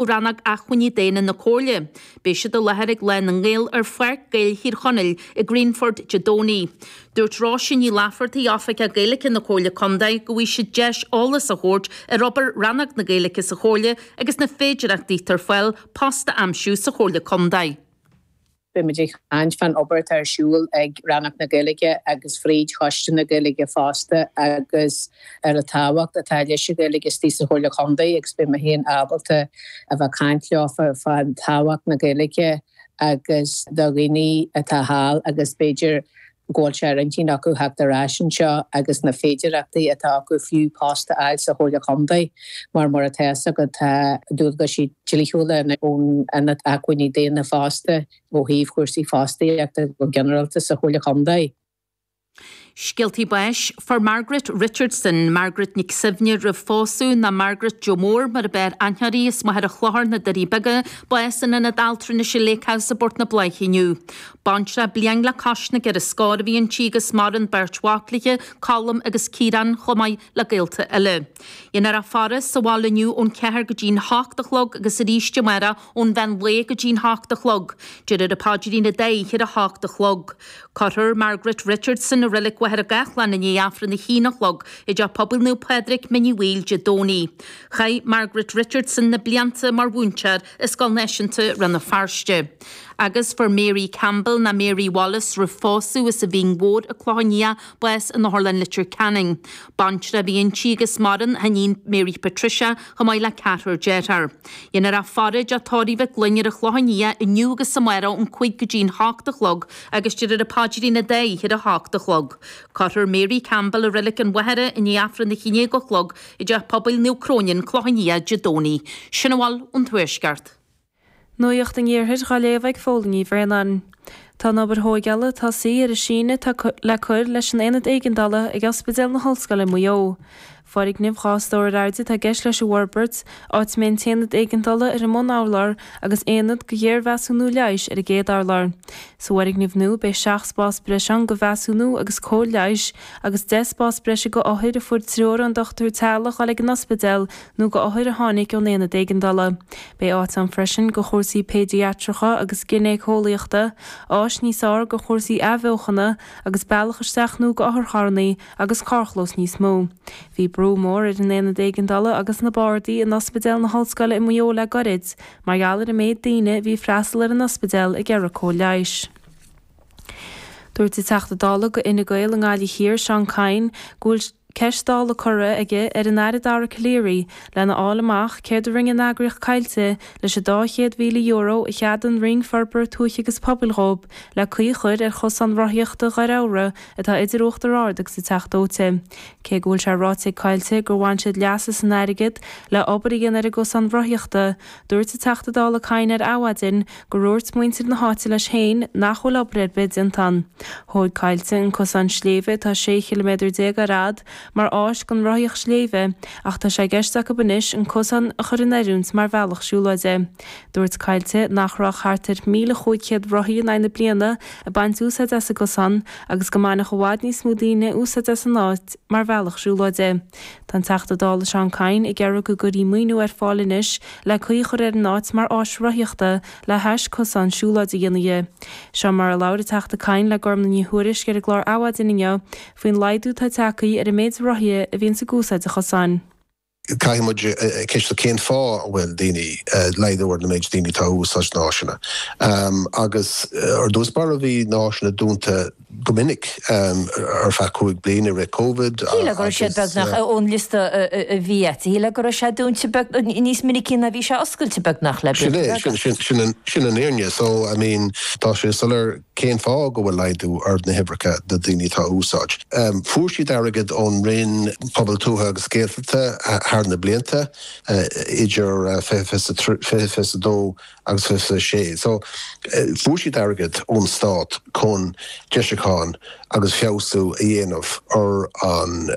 ó Rannóg Acmhainní Daonna na Comhairle. Beidh siad i láthair ag Lá na nGael ar Pháirc Gaeil Thír Chonaill i Greenford Dé Domhnaigh. Dúirt Róise Ní Laifeartaigh, Oifigeach Gaeilge na Comhairle Contae, go bhfaighidh siad deis eolas a thabhairt ar obair Rannóg na Gaeilge sa Chomhairle agus na féidireachtaí atá ar fáil post a aimsiú sa Chomhairle Contae. Beimid ag caint fán obair atá ar siúl ag Rannóg na Gaeilge agus fríd Choiste na Gaeilge fosta agus ar an tábhacht atá leis an Ghaeilge istigh sa Chomhairle Chontae agus beidh mé féin ábalta a bheith ag caint leofa fán tábhacht na Gaeilge agus do dhaoine atá thall agus b'fhéidir go bhfuil sé ar intinn acu theacht ar ais anseo agus na féidireachtaí atá acu fiú post a fháil sa Chomhairle Chontae mar mar atá fhios agat tá dualgaisí dlíthiúla ón Ionad Acmhainní Daonna fosta ó thaobh chúrsaí fostaíochta go ginearálta sa Chomhairle Chontae. Scéaltaí báis. Fuair Margaret Richardson, Margaret Nic Suibhne roimh phósadh ná Margaret Joe Mór mar ab fhearr aithne uirthi, as Machaire Chlochair, na Doirí Beaga, bás in Ionad Altranais an Lake House i bPort na Bláiche inniu. Baintreach bliain le cois na gceithre scór a bhí inti agus maireann beirt mhac léithe, Colm agus Ciarán, chomh maith le gaolta eile. Déanfar a faire sa bhaile inniu ón ceathair go dtí'n hocht a chlog agus arís amáireach ón mheán lae go dtí'n hocht a chlog. Déarfar an Paidrín an dá oíche ar a hocht a chlog. Cuirfear Margaret Richardson i Reilig Mhachaire Gathlán i ndiaidh Aifreann a haon a chlog i dTeach Pobail Naomh Pádraig, Mín Uí Bhaoill, Dé Domhnaigh. Chaith Margaret Richardson na blianta mar mhúinteoir i Scoil Náisiúnta Rann na Feirste. Agus fuair Mary Campbell ná Mary Wallace roimh phósadh as an Mhín Mhór, an Clochán Liath bás in Otharlann Litir Ceanainn. Baintreach a bhí inti agus maireann a hiníon Mary Patricia chomh maith le ceathrar dearthár. Déanfar a faire i dTeach Tórraimh Mhic Fhloinn ar an Chlochán Liath inniu agus amáireach ón cúig go dtí'n h-ocht a chlog agus déarfar an Paidrín an dá oíche ar a h-ocht a chlog. Cuirfear Mary Campbell i Reilig an Mhachaire i ndiaidh Aifreann a haon déag a chlog i dteach pobail Naomh Cróine, an Clochán Liath, Dé Domhnaigh. Sin a bhfuil ón Tuaisceart. Nuacht an Iarthair dhá léamh ag Fódhla Ní Bhraonáin. Tá an obair thóigeála tosaithe ar an síneadh atá le cur leis an Aonad Éigeandála ag Ospidéal na hOllscoile i Maigh Eo. Foirgneamh dhá stór ar airde atá i gceist leis an bhforbairt, áit a mbeidh an tAonad Éigeandála ar an mbun-urlár agus Aonad do Ghéarmheasúnú Leighis ar an gcéad urlár. Sa bhfoirgneamh nua beidh seacht spás breise ann go mheasúnú agus cóir leighis agus deich spás breise go othair a fuair treoir ón dochtúir teaghlach dul ag an ospidéal nó go othair a tháinig ón aonad éigeandála. Beidh áit ann freisin go chúrsaí péidiatracha agus ginéiceolaíochta, áis níos fhearr go chúrsaí athbheochana agus bealach isteach nó go otharcharrannaí agus carrchlós níos mó. Bhí brú mór ar an aonad éigeandála agus na bardaí in Ospidéal na hOllscoile i Maigh Eo le gairid mar gheall ar an méid daoine a bhí ag freastal ar an ospidéal ag iarraidh cóir leighis. Dúirt an Teachta Dála de chuid Fhine Gael i nGaillimh Thiar, Seán Kyne, go bhfuil ceist Dála curtha aige ar an Aire Dara Calleary lena fháil amach céard a rinne an eagraíocht Coillte leis an €200,000 a cheadaigh an Roinn Forbartha Tuaithe agus Pobail dhóib le caoi a chur ar chosán rothaíochta Dhoire Eabhra atá idir Uachtar Ard agus an Teach Dóite. Cé go bhfuil sé ráite ag Coillte gur bhain siad leas as an airgead le obair a dhéanamh ar an gcosán rothaíochta, Dúirt an Teachta Dála Kyne ar Adhmhaidin go ndúirt muintir na háite leis féin nach bhfuil obair ar bith déanta ann. Thóig Coillte an cosán sléibhe atá 16 chiliméadar ar fhad mar áis don rothaíocht sléibhe ach tá sé i gceist acu anois an cosán a chur in oiriúint mar bhealach siúlóide. Dúirt Coillte nach raibh ach thart ar 1,500 rothaí in aghaidh na bliana ag baint úsáid as an gcosán agus go mbainfeadh i bhfad níos mó daoine úsáid as an áit mar bhealach siúlóide. Tá an Teachta Dála Seán Kyne ag iarraidh go gcuirfí maoiniú ar fáil anois le caoi a chur ar an áit mar áis rothaíochta le hais cosán siúlóid a dhéanamh di. Seo mar a labhair an Teachta Kyne le Gormlaith Ní Thuairisg ar an gclár Adhmhaidin inniu faoin laghdú atá tagthaí ar an méid rothaithe a bhíonns ag úsáid an chosáin. Caithfidh muid ceistiú cén fáth a bhfuil daoine laghdú ar na méid daoine atá ag úsáid na háiseanna. Agus ar dtús báire bhí na háiseanna dúnta go minic ar feadh cúig bliain i rith Covid. Shíl mé go raibh siad beagnach ón liosta a bhí agat. Shíl mé go raibh sé dúnta beagnach, níos minicí ná a bhí sé oscailte beagnach le blianta beaga. Sin é, sin an fhírinne. So, I mean, tá sé soiléir cén fáth go bhfuil laghdú ar na huimhreacha de dhaoine atá á úsáid. Fuair siad airgead ón Roinn Pobal Tuaithe agus Gaeltachta thar na blianta, idir 2020 is 2022 agus 26. So, fuair siad airgead ón stát chun deisiúcháin agus feabhsú a dhéanamh ar an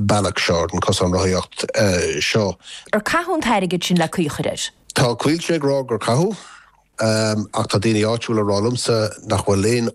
bealach seo, ar an cosán rothaíocht seo. Ar caitheadh an t-airgead sin le caoi a chur air? Tá Coillte ag rá gur caitheadh, ach tá daoine áitiúla ag rá liomsa nach bhfuil aon